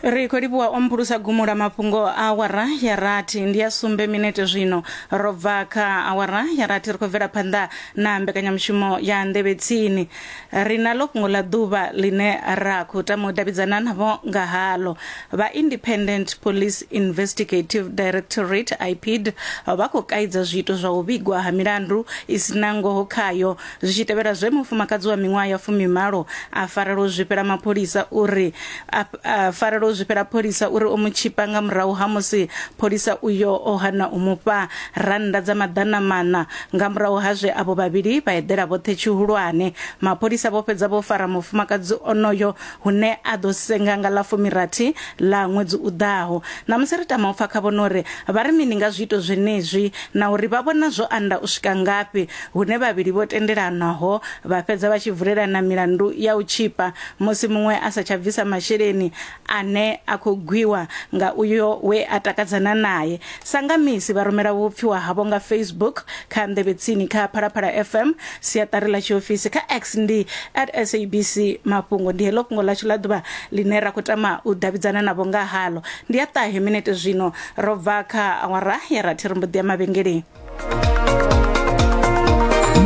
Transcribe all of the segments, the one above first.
ri khou livhuwa o mphulusa gumo ḽa mafhungo a awara ya rathi ndi ya sumbe minete zwino ro bva kha awara ya rathi ri khou bvela phanḓa na mbekanyamushumo ya nḓevhe tsini ri na ḽo fhungo ḽa ḓuvha ḽine ra khou tama u davhidzana navho nga halo vha independent police investigative directorate ipid vha khou kaidza zwiito zwa u vhigwa ha milandu i si na ngoho khayo Zwi tshi tevhela zwe mufumakadzi wa miṅwaha ya fumimalo a farela u zwifhela mapholisa uri a, a farela u zwifhela pholisa uri o mu tshipa nga murahu ha musi pholisa uyo o hana u mufha rannda dza maḓana maṋa nga murahu ha zwe avho vhavhili vha eḓela vhoṱhe tshihulwane mapholisa vho fhedza vho fara mufumakadzi onoyo hune a ḓo senga nga ḽa fumirathi ḽa ṅwedzi u ḓaho ṋamusi ri tama u pfa khavho no ri vha ri mini nga zwiito zwenezwi na uri vha vhona zwo anda u swika ngafhi hune vhavhili vho tendelanwaho vha fhedza vha tshi vulelana milandu ya u tshipa musi muṅwe a sa tsha bvisa masheleni ane a khou gwiwa nga uyo we a takadzana naye Sa nga misi, vha rumela vhupfiwa havho nga Facebook, kha nḓevhe tsini, kha Phalaphala FM, siaṱari ḽa tshiofisi, kha X ndi at SABC Mafhungo. Ndi heḽo fhungo ḽashu ḽa ḓuvha ḽine ra khou tama u davhidzana navho nga haḽo. Ndi ya ṱahe minete zwino ro bva kha awara ya rathi ri mbo ḓi ya mavhengeleni.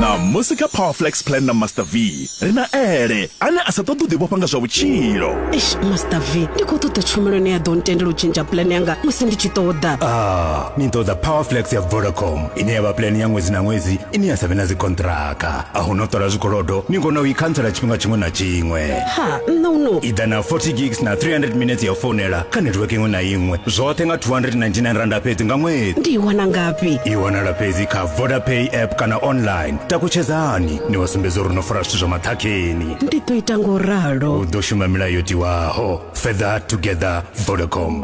na musi kha powerflex plan na master v ri na ele ane a sa ṱoḓi u ḓivhofha nga zwa vhutshilo eish master v ndi khou ṱoḓa tshumelo ine ya ḓo ntendela u tshintsha pulane yanga musi ndi tshi ṱoḓa ah ni ṱoḓa powerflex ya vodacom ine ya vha pulane ya ṅwedzi na ṅwedzi ine ya sa vhe na dzikontraka a hu no ṱola zwikolodo ni kona u i khantsela tshifhinga tshiṅwe na tshiṅwe ha nṋe uno i ḓa na 40 gigs na 300 minutes ya founela kha network iṅwe na iṅwe zwoṱhe nga 299 randa fhedzi nga ṅwedzi ndi i wana ngafhi i wanala fhedzi kha vodapay app kana online takutshedzani ni wa sumbedza uri no fara zwithu zwa maṱhakheni ndi ḓo ita ngo ralo u ḓo shuma milayo tiwaho further together vodacom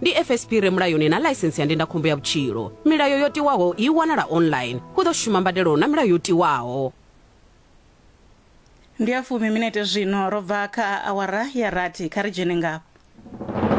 ndi fsp re mulayoni na ḽaisense ya ndindakhombo ya vhutshilo milayo yo tiwaho i wanala online hu ḓo shuma mbadelo na milayo yo tiwaho Ndi ya fumi minete zwino, ro bva kha awara ya rathi. Kha ri dzhene ngafha.